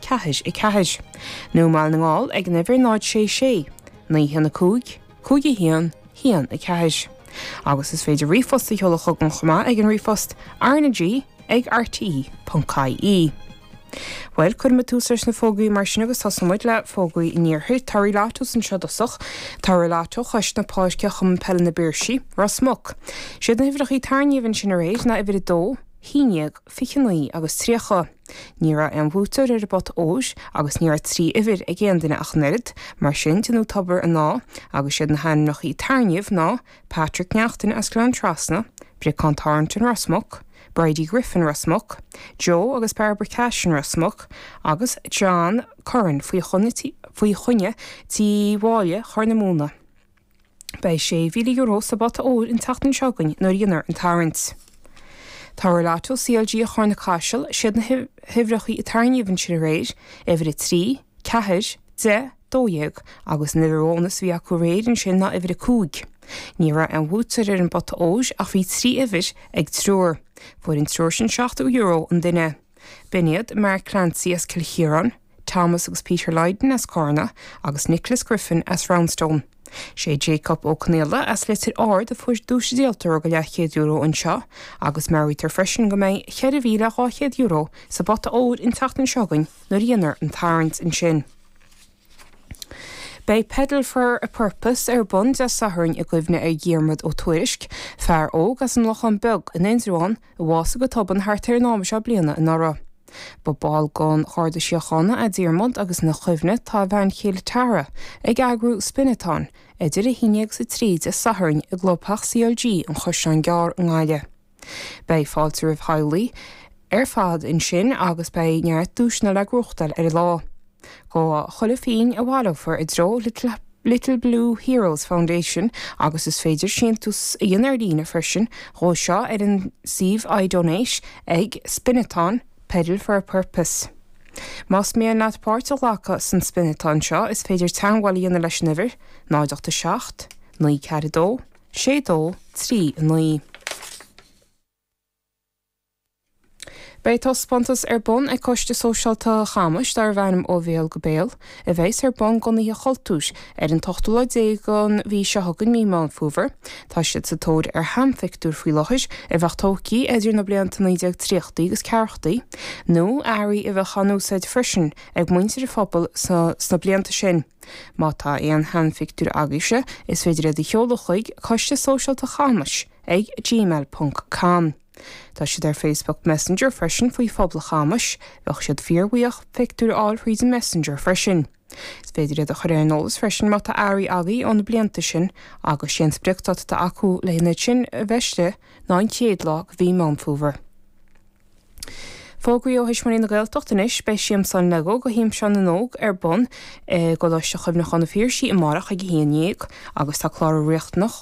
ceathair a ceathair, nó i mBaile na nGall ag an uimhir 0 sé sé, naoi haon a cúig, cúig a haon, haon a ceathair. Agus is féidir ríomhphost a sheoladh chugam chomh maith ag an ríomhphost, rnag ag rte. ie. Bhuel, cuirimid tús leis na fógraí mar sin agus tosóimid le fógraí an iarthair. Tá torthaí lottos anseo i dtosach. Tá torthaí lotto Chois na páirce, Chumann Peile na bPiarsaí, Ros Muc. 'Siad na huimhreacha a tarraingíodh ansin aréir ná uimhir a dó, haon dhéag, fiche naoi agus tríocha. Ní raibh aon bhuaiteoir ar an bpota óir agus ní raibh trí uimhir ag aon duine ach an oiread, mar sin déanadh tobar ann agus siad na hainmneachaí a tarraingíodh ná, Patrick Neachtain as Gleann Trasna, Briocán Thorrington Ros Muc, Bridie Griffin Ros Muc, Joe agus Barbara Cashin Ros Muc agus John Curran faoi choinne Tigh Mháille Chorr na Móna. Beidh €6,000 sa bpota óir an tseachtain seo chugainn nuair a dhéanfar an tarraingt. Tá torthaí lotto CLG Charna Caiseal, siad na huimhreacha a tarraingíodh ansin aréir uimhir 3, 4, 10, 12 agus an uimhir bhónas a bhí acu aréir ansin ná uimhir 5. Ní raibh aon bhuaiteoir ar an bpota óir ach bhí trí uimhir ag triúr. Fuair an triúr sin €70 an duine. B'in iad Mark Clancy as Cill Chiaráin, Thomas agus Peter Lydon as Carna agus Nicholas Griffin as Roundstone. Sé Jacob Ó Conaola as Leitir Ard a fuair duais díoltóra go luach €100 ansin agus meabhraítear freisin go mbeidh €4,200 sa bpota óir an tseachtain seo chugainn nuair a dhéanfar an tarraingt ansin. Beidh Pedal for a Purpose ar bun Dé Sathairn i gcuimhne ar Dhiarmaid Ó Tuairisc, fear óg as an Lochán Beag in Indreabhán a bhásaigh go tobann thart ar an am seo bliain anuraidh. Ba bhall den Gharda Síochána é Diarmaid agus ina chuimhne tá a bhean chéile Tara ag eagrú Spin-a-thon idir a haon agus a trí Dé Sathairn i gClubtheach CLG an Chaisleáin Gearr i nGaillimh. Beidh fáilte roimh theaghlaigh ar fad ansin agus beidh neart duaiseanna le gnóthachtáil ar an lá. Gabhfaidh chuile phínn a bhaileofar i dtreo Little Blue Heroes Foundation agus is féidir síntiús a dhéanamh ar líne freisin dhó seo ar an suíomh iDonate ag Spinathon, Pedal for a Purpose. Más mian leat páirt a ghlacadh san Spinathon seo is féidir teagmháil a dhéanamh leis an uimhir, 0 8 7, 9 4 2, sé dó trí a naoi. Beidh taispeántas ar bun ag Coiste Sóisialta Chamuis darbh ainm Ó Bhéal go Béal, a bheas ar bun gon Oíche Chultúir ar an t-ochtú lá déag den mhí seo chugainn, Mí Meán Fómhair. Tá siad sa tóir ar sheanphictiúir faoi láthair, a bheadh tógtha idir na blianta 1930í agus ceathrachaí, nó earraí a bheadh á n-úsáid freisin ag muintir an phobail sna blianta sin. Má tá aon sheanphictiúir agaibhse, is féidir iad a sheoladh chuig, Coiste Sóisialta Chamuis, ag gmail ponc com. Tá siad ar Facebook Messenger freisin faoi Phobal Chamuis. Bheadh siad fíorbhuíoch pictiúir a fháil thríd an Messenger freisin. Is féidir iad a chur ar an eolas freisin má tá earraí agaibh ó na blianta sin agus sé an spriocdáta atá acu leo sin a bheith istigh ná an chéad lá de mhí Meán Fómhair. Fógraí ó Thuismitheoirí na Gaeltachta anois, Beidh Siamsa an Lego do hImseáin na nÓg ar bun i gColáiste Chuimhneachán an Phiarsaigh amárach ag a haon dhéag agus tá clárú riachtanach.